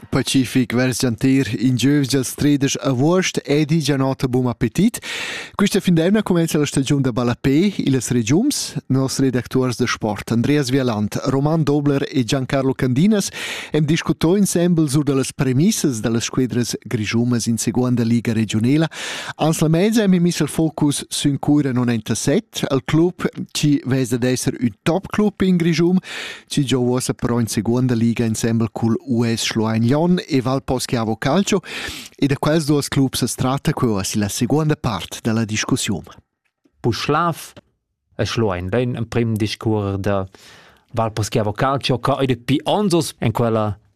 Pacific vers gianter in giövs dals tredesch avuost ed i già nota bun appetit. Quista fin d'eivna cumenza la stagiun da ballapè illas regiums. Nos redactuors da sport Andreas Vialant, Roman Dobler e Giancarlo Candinas hem discutò insembel sur da las premissas da las squedras grischumas in seguonda liga regiunela. Ans la mezza hem miss il focus sün cura non enta set al club chi vez da esser ün top club in Grischum, Ci gio uossa però in seconda liga insembel cul US Schloein-Lyon e Valposchiavo Calcio e da quels duos clubs as tratta que uossa la seconda part della discussiun. Puschlav e Schloein ben in prim discours da Valposchiavo Calcio ca ed pi anzos in quella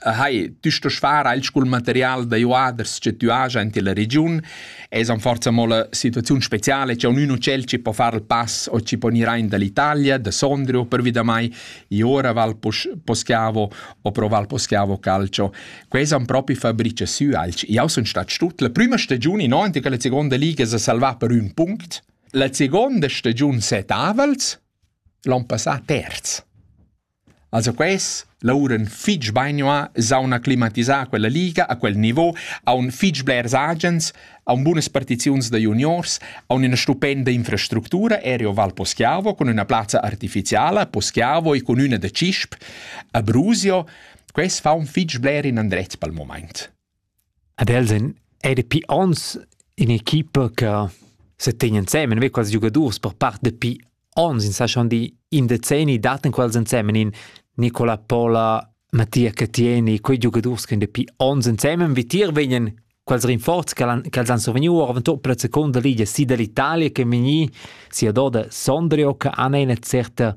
Hai, tüsta schvara il scul material da juaders che tü haja in tilla regiun es an forza mo la situaziun speciale che ognuno cel ci po far il pass o ci po gnir aint dall'Italia, da Sondrio pervi da mai, i ora val Poschiavo o pro val Poschiavo Calcio. Quais han propi fabrice sü alch. Io sun stat stut la prima stagiun in avanti che la seconda liga s'ha salvà per ün punct. La seconda stagiun set avals, l'on passà terz. Also quels lavouran fich bainua, s'haun acclimatisà a quella liga, a quel nivo, haun fich blers agens, haun bunas partiziuns da juniors, haun üna stupenda infrastructura, ero Val Poschiavo cun üna plazza artificiala a Poschiavo e cun üna da Cisp a Brusio. Quels faun fich bler inandret pel mumaint. Ad els ein era pi onns in'equipa che setegn ensemen, ve quels giugadurs per part dapi onns, ins sa schon di in decenni dattan quels ensemen in Nicola Pola, Mattia Cattieni, quei giugadurs che dapi onns ensemen vitier vegnan quels rinforzi che han, che els han survegniu avon tot per la seconda ligia si dall'Italia che vegni sia doda Sondrio che han ina certa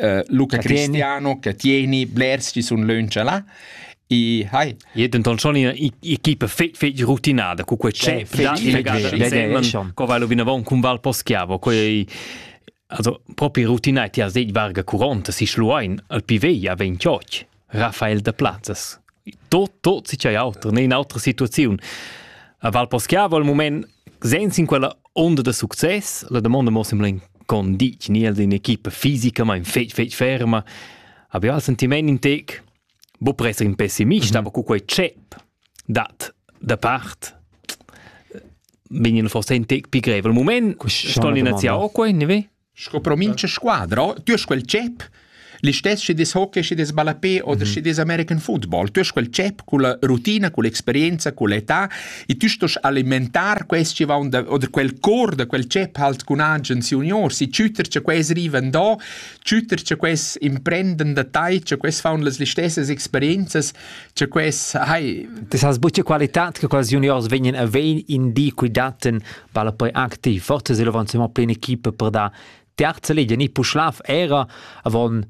uh, Luca che Cristiano che tieni blers ci sun leuncia là e hai e denton schon equipa fetg fetg rutinada cu quei c'è co vai lo vinavon cun Val Poschiavo quei also propi rutinai ti has deit varga curonta si schluein al pivei a ventioch Raffael da Plazzas. Tot, tot si c'è auter, ne in autra situaziun. A Val Poschiavo al moment, senza in quella onda da succes, la domanda mo semplice condic, ni els in equipa fisica, ma in fetg, fetg ferma. Abbiamo il sentiment in tec, bo presa in pessimista, mhm. aber cu quei chep dat da part bin in forse in tec più greve. Al moment sto l'inaziare qua, ne ve? Sco pro mincha squadra, tü hast quel tschep, listess schi des hockey, schi des ballapè oder schi des American football. Tü hast quel tschep culla rutina, culla experienza, culla età e tü stos alimentar quest chi vaun da, oder quel cor da quel tschep halt cun agens juniors e tschütter cha quels rivan do, tschütter cha quels imprenden da tai, cha quels faun las listessas experienzas, cha quels, hai, Das hast buca qualità che quels juniors vegnan a vein in di, cui dattan vala poi anche ti forse se l'avanzamento in equipe per da terza liga ni Puschlav era avon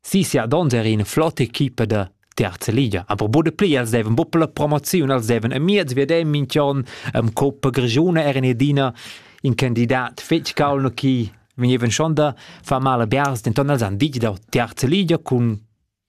si sia donza era in flotte equipe de terza liga aber bude pli els deven buppel la promozion els deven a miez wir dem minchion am Coppa Grigione era edina in candidat fetg calno chi venivan schon da fa male biars denton els han dit da terza liga cun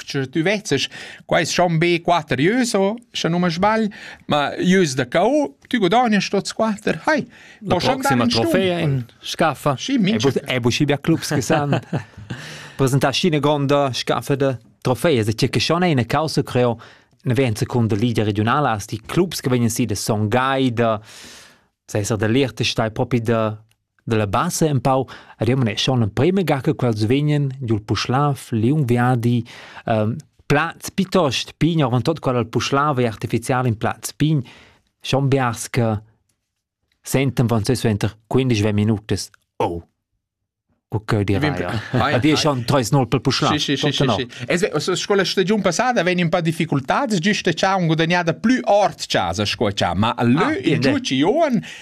Sche tu vezzes, quai es schon be quatter ieus, sche nu ma sbagl, ma ieus da cau, tu gudagnast tuots quatter. Hai, La proxima trofea in scaffa. Sì, mincha. È buschi bia clubs che san presentar scine gronda scaffa de trofee. Se c'è che schon è una causa creo ne ven seconda Liga regionala as die Clubs che vengono sie de Songhai de sai der Lehrte stai propi de Dalla basa empau remuneschan l'emprema ga che quels vegnan dil puschlav liung viadi plaz piuttost pign, oravontut quella dal puschlav ei artificial in plaz pign, schon biars che sentan van suenter quindesch minutas oh cu cheu dirai. E dir schon treis nol per puschlav. Sì, sì, sì, sì, sì. Sco la stagiun passada vegn un po' difficultads, giusto cha un gudagnada plü ord casa sco cha, ma lö in giuci Ioan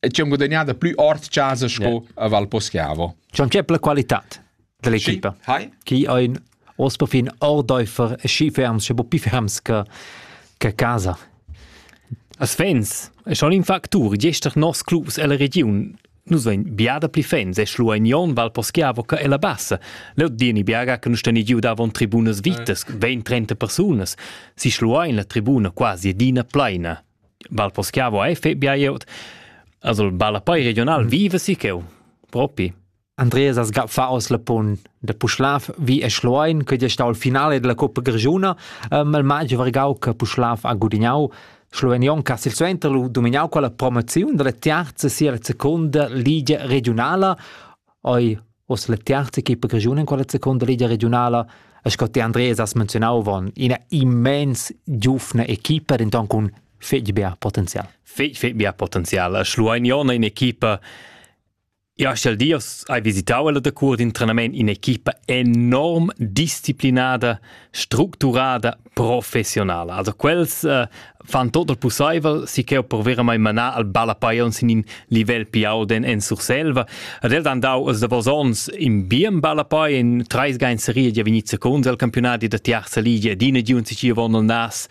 e ci ho guadagnà da plü ord chasa sco yeah. a Val Poschiavo. C'è c'è la qualità dell'equipa. Sì. Hi. Chi ha un os per fin ordeifer e schi ferms, sche bo più ferms che che casa. As fans, è schon in factur, gestern nos clubs e la region nus vein biada pli fans e schluagnon val poschiavo che e la bassa leu dini biaga che nus teni giu davon tribunas vitas 20-30 persunas si schluain la tribuna quasi edina pleina bal poschiavo ei fe biaiot also balla poi regional vive si cheu propi Andreas as gaffa aus la pun de Puschlav vi e Schloein che sta al finale della Coppa Grigiuna mal magio vargau che Puschlav ha gudignau Slovenion che silsuenter lu dominau quella promoziun della terza sia seconda ligia regionala Ei oz la tiarza equipa grischuna en quella secunda ligia regiunala e sco ti Andreas has menzionau avon, ina immens giufna equipa denton cun fetg bia potenzial. Fetg fetg bia potenzial. E Schluein Jona in equipa Ja, stell dir, hai visitau ella da cur d'in trenament in equipa enorm disciplinada, structurada, professionala. Also quels uh, fan tot il possibel si che per veramente manar al ballapaion sin in livel piau den en Surselva. Ad el dan dau als davos ons in bien ballapai in treis gain serie ja venit secund al campionati da tiarza ligia ed ina giun si ci von al nas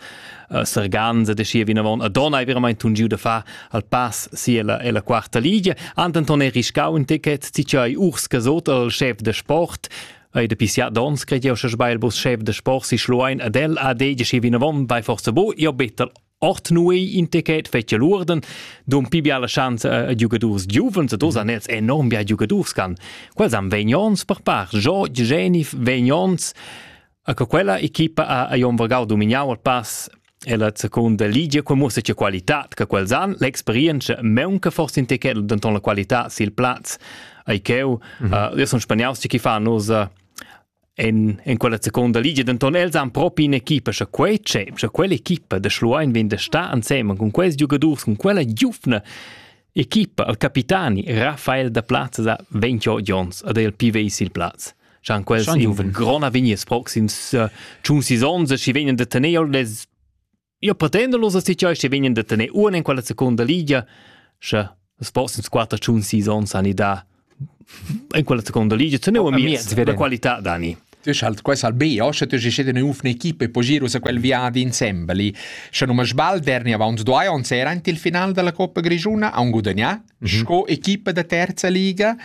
uh, Serganza de schi vinavon a donna è veramente un giu da fa al pass si alla alla quarta ligia Anton è riscau un ticket si ci urs casot al chef de sport Ei de pisiat dons cred jeu sche sbail bus chef de sport si schluein ad el a de schi vinavon bei forza bo jo better ort nui in ticket fetje lurden dum pibia la chance a giugadurs giuvens e dos an els enorm bia giugadurs gan quels am vegnons per par George Genif vegnons a che quella equipa a a Jon Vergau domignau al pass E la secunda ligia co muossa che qualitad che quels han, l'experienza meunca forse in tequel denton la qualità sil plaz. Ei cheu, mm -hmm. uh, io son spaniaus che fa nos uh, en, en quella seconda ligia, denton els han propi in equipa, sche quei c'è, sche quell'equipa de Schluein vende sta ansemen con quels giocadors, con quella giufna equipa, al capitani Rafael da Plaza sa 28 Jons ad el PV sil plaz. Chan quels giuven grona vignes proxims uh, tschun sis ons e schi vegnen de tener les io pretendo los sti choi schi vegnen de tener un in quella seconda ligia sche les proxims quatter tschun sis ons ani da in quella seconda ligia te neu mi la qualità dani Tu schalt quais al B, osche tu gescete ne uf ne equipe po giru se quel viadi insembli. Sche nu me sbal derni avant due ons era ant il final della Coppa Grigiuna a un gudagna, sco equipa da terza liga.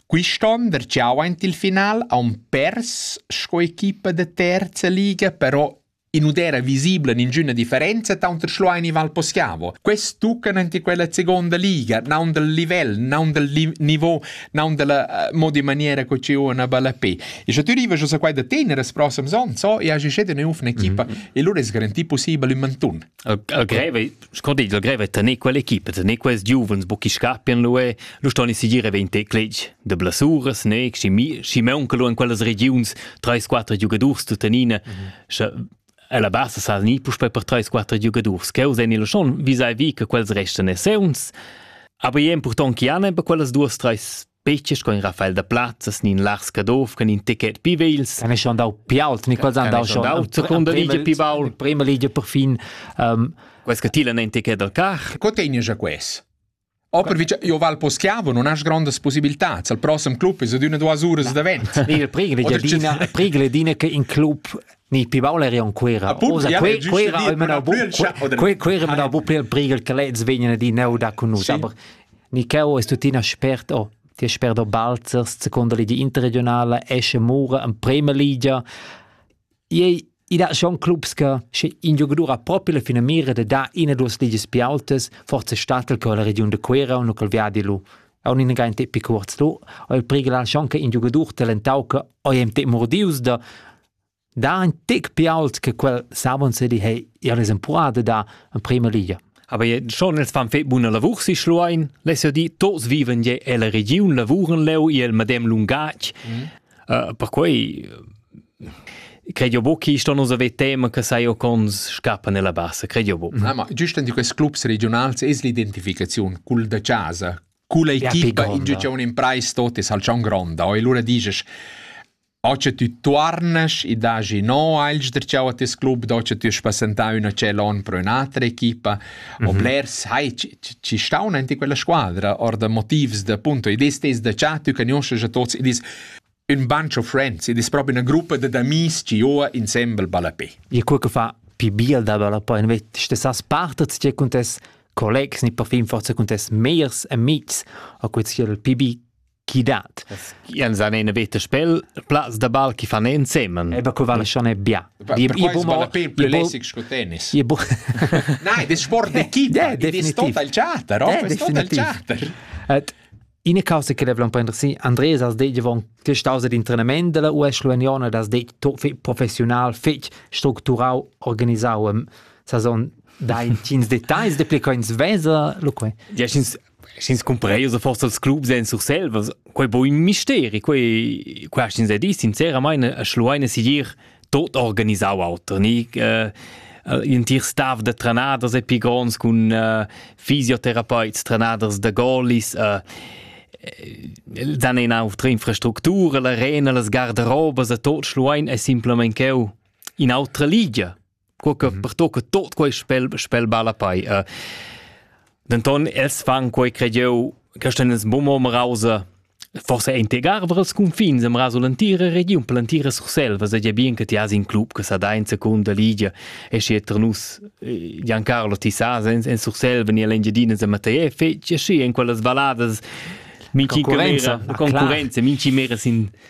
Quist'on vergiau aint il final haun pers sco equipa da terza liga, però in udera visibla ningüna differenza taunter Schluein e Val Poschiavo. Quest tuccan ante quella seconda liga, naun dal livel, naun dal li niveau, naun dalla uh, mod in maniera co ci una bella pe. E sche tu riva giu sa quai da tenere as prossem son, so, e agi scede ne ufna equipa, mm -hmm. e lura es garantì possibel in mantun. Uh, greve Sco digl grev è tener quell'equipa, tener quels giuvens bucchi scappian lu e lu ston ins sigir vegn tecletg de blasuras, ne Schimeun che lu en quellas regiuns treis quater giugadurs tuttenina, sche ella bassa sa ni puspei per treis quater giugadurs. Cheu sen il schon visai vi che quels restan esseuns. Aber je impurtant chi han per quellas duas treis Peche sco in Rafael da Plazzas ni in Lars Caduff che in ticket pi vegls. Kan ich dau piaut, ni quals han dau schon. Seconda ligia pi baul. Prima ligia per fin. Um, Quels che tilan ein ticket dal cach. Co tegni già quest? Aber io val po schiavo, non has grandes possibilità. Il prossimo club è ad una duas ore davent. Nee, pregele dir, Dina, pregele Dina che in club ni pi baul eri on Cuera. Osa quei Cuera e mena bu quei Cuera mena bu per prigel che lez vegnan di neu da cunus, aber ni cheu es tutina spert o ti spert o balzers secondo li di interregionale esce mura en Premier Liga. Ei i da schon clubs che sche in giocatore ha proprio la fine mira de da in e due ligis più autes, forse statel con la region de Cuera un col viadi lu on in gain te picuorz du o il prigel ha schon che in giocatore talentau che o im te mordius da dà ün tic pi ault che quel s'avanzedi he ir es empurada da in prima ligia. Aber schon els fan fet buna lavur si Schluein, les jo di, tots viven je ella regiun, lavuren leu il medem lungatg. Mm. Uh, perquei credo bo chi sto nos ave tema che sai o cons scappa nella bassa, credo bo. Mm. Ah, ma giusto in questi clubs regionals es l'identificazione cul da casa, culla equipa in giugione in price tot es al cion gronda, e lura dices O che tü tuornas e dagi no agl sdrtschau a tes club, do che tü has passentau ün acel onn pro ün'atra equipa, mm -hmm. o blers hai ci staun enti quella squadra, or da motivs da punto, id ist des da cha tü cagnosces a tots, id ist un bunch of friends, id ist proprio una gruppa da d'amis ci joa insembel balla pe. E quel che fa pi biel da balla pe, invece stessas parte ci con tes collegs, ni per fin forse con tes meiers amics, a quel sia il PB chi dat. Jens han ina veta spel plaz da ball chi fan ensemen. E ba co vale schon bia. Je bo. Nein, das Sport de Kita, das total chatter, das total chatter. Ina causa che devla un po' interessant, Andres has detto von questa causa di entrenament della US Luaniona, das detto professional fetg structurau organisau saison da in tins details de pli coins vesa lo quei. Yes, Sch'ins cumpreius forsa als clubs en Surselvas, quei bo in misteri, quei quei hast ins dis sinceramain a Schlueine sigir tot organisau auter, ni äh, in tier staff da trenaders e pi gronds cun äh, fisiotherapeuts, trenaders da goalies, äh, dan ina autra infrastructura, la arena, las garderobas a tot Schluein è simplement cheu in autra ligia. co che mm. pertocca tot quei spel spel balla pei uh, denton els fan quei creieu Christians Bomo Mrause forse integar vras confins am raso l'antira regiun per l'antira Sursel was ja bien che ti has in club che sa da in seconda ligia e sche ternus Giancarlo ti sa en en Sursel veni l'Engiadina a Matei fece schi in quelle valadas minci concorrenza minci mera sin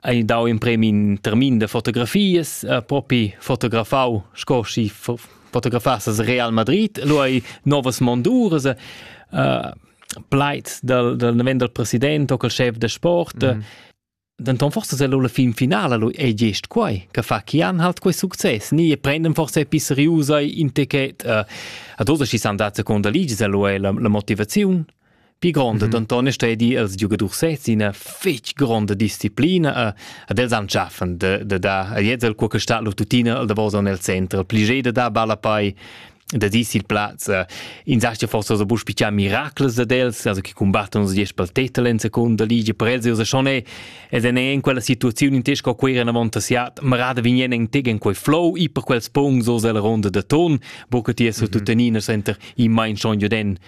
ei dau in premi in termin de fotografies eh, propi fotografau sco si fotografassas Real Madrid lo ei novas mondures eh, pleit dal dal neven dal president o col chef de sport mm. Denton forse se la fin finala lu ei gest quai che fa chi han halt quei success ni e prendem forse pisseriusa in ticket uh, a dos si san dat seconda ligi se lu è la, la motivaziun Pi gronda mm -hmm. denton è stedi els giugadurs sez ina fetg gronda disciplina e, ad els han schaffen de, de da jetzt el quo sta lo tutina da vosa nel center plige de da balla pai da dis il plaz in sastia forse so busch picha miracles ad els also che combattono su diesch pel tetel in seconda liga per els io schon è ed è in quella situazione in tesco qui era avanti siat marada vignen in tegen quei flow i per quels pungs so la ronda de ton bo che ti è su tutenina center i mein schon jo den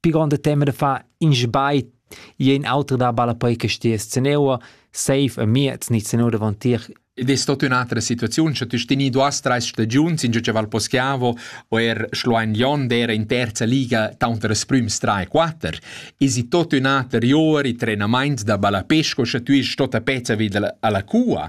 pi gronda tema da far in sbagl i è in auter da ballapoi che stia sceneua safe a miez ni sceneua davantir Ed è stata un'altra situazione, cioè tu stini due tre stagioni, in che Val Poschiavo o er Schluein Lion era in terza liga tanto das prüms 3 e 4 e si tot un altro ore i trenament da ballapesco, cioè tu eri stata pezza vid alla cua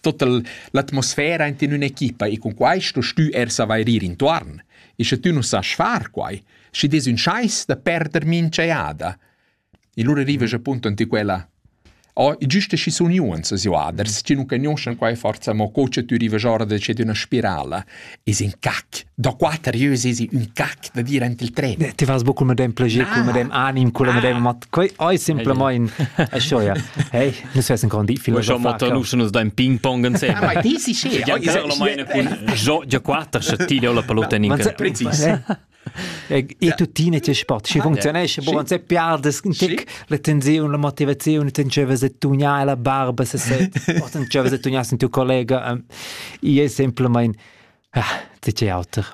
Total l'atmosfera int in ün'equipa e cun quai sto stü er savair ir intuorn. E sche tü nu sas far quai, schi des ün schais da perder minch'eada. E lura arrivas appunto ante quella Oh, e giuste schi sun iuns as joaders, chi nu cagnuoschan quai forza, mo co cha tü rivas ora da ced üna spirala. is in cac. Da quater jeu sesi un cac da dir ent il tren. Ti vas bu cul medem plagier, cul medem anim, cul medem mat. Quei ei simplemein e scho ja. Hey, nus vessen kon di film. Schon motor nu schon da ping pong insem. Ma ti si sche. Ja quater sche ti la palutta ninka. Precis. E tuttina tge sport, sche funcziunesce, buon se piardes un tic la tensiun, la motivaziun, ten cevas de tugnar la barba se se, o ten cevas de tugnar sen tu collega, um, i è semplicemente tge auter.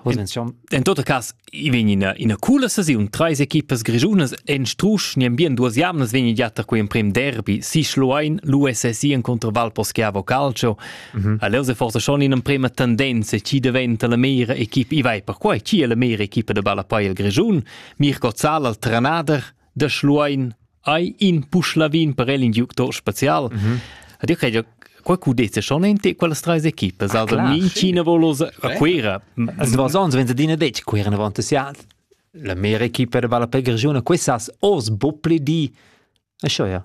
En tot cas, i vegn ina, ina coola sesiun, treis equipas grigiunas en strusch, ni bien duas jamnas vegn giatta quei emprem derby, si Schluein, l'USSI en contra Valposchiavo Calcio, Mhm. Allora è forse schon in emprema tendenza chi diventa la mera equipa, i vai perquai chi è la mera equipa de ballapei il Grigiun, Mirko Zahl al trenader de Schluein ai in puschlavin per el in giuctor special. Mhm. Ad io credo qualcuno dice schon in te quelle tre equipe, ah, also min Cina volosa a Quera. Also was sonst wenn du detg Quera avanti siat. La mera equipa de ballapei Grigiun, quest'as os bopli di. E scho ja.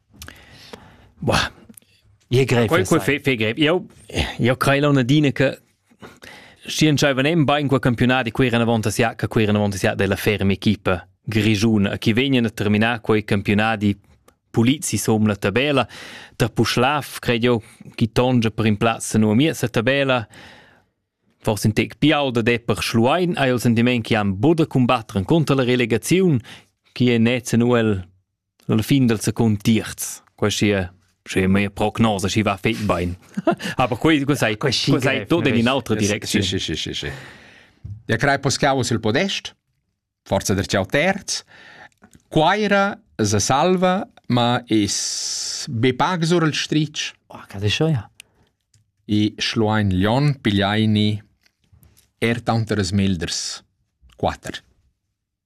Ie greiv fe greiv. Io io crei l'on adina che schi dschaiva nem bain quel campiunat e quei era avant as ja, che quei era avant as ja della ferma equipa grigiuna. Chi vegnan a terminar quei campionati pulizi som la tabella. Da Puschlav cred io chi tongia per in plazza nu a mia sa tabella. Forse in tec piau da de per Schluein hai il sentiment che han buda combattere contro la relegazione, chi è net nuel la fin del secund terz quasi sche mia prognosa schi va fet bein aber quei quei sei quei sei tot in un'altra direczione sì sì sì sì ja crei poscau sul podest forza der ciao terz Quaira se salva, ma es be pag sur il stric. Oh, cas è schon, ja. I schluain Lion pigliaini er tanteres milders. Quatter.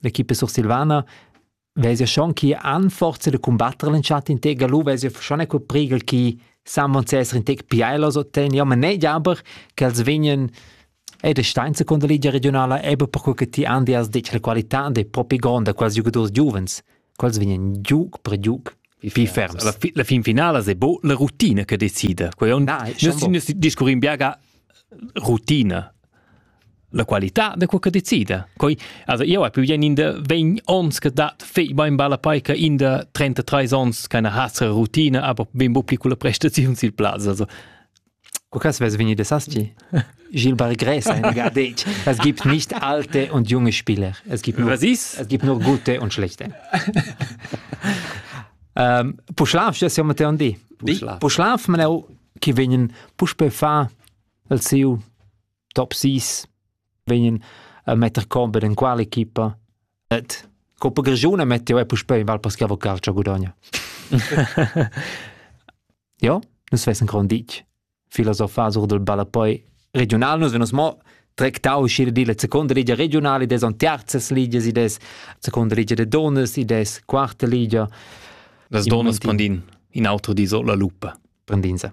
L'equipa sursilvana vezia schon chi han forza da cumbatter l'entschatta in tega lu vezia schon quel priegel chi saman sesser in tec piailos ottenni, ma ne aber che els vegnan ed stainza con la Ligia regionala eba perquei che ti andi as detg la qualità dei propi gronda quels giugadors giuvens, quels vegnan giuc per giuc pli ferms. La, la fin finala è bo la rutina che decide. Quei on, ah, non si discurrin biaga rutina. la qualità da co che decida. Coi, also io hai più bien in de 20 ons che dat fei bein balla paica in de 33 ons keine hasre routine, aber ben bo piccole prestazioni sil plaz. Also Cu cas vess veni de Saschi? Gil Bar Gres ein gardetg. Es gibt nicht alte und junge Spieler. Es gibt nur, Was ist? Es gibt nur gute und schlechte. ähm, Puschlav, das ja Matteo di. Puschlav. Puschlav man auch, ki vegnen puspe fa al siu top 6 vegnan a metter combat en quale equipa et Coppa Gagione metto è puspei in val per schiavo calcio gudogna. ja, nus vessen gran ditg. Filosofar sur del balla poi regional nus venus mo trectau uscire di la seconda ligia regionale des on terzes ligias i des seconda ligia de donas i des quarta ligia das donas prendin in auto di so la lupa prendin se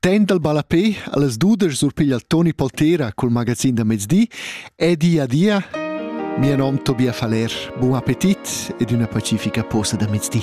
Temps dal ballapè a las dudesch surpiglia Toni Poltera col magazin da mezdi e di adia. Mio nom Tobias Faller, buon appetit ed una pacifica posta da mezdi.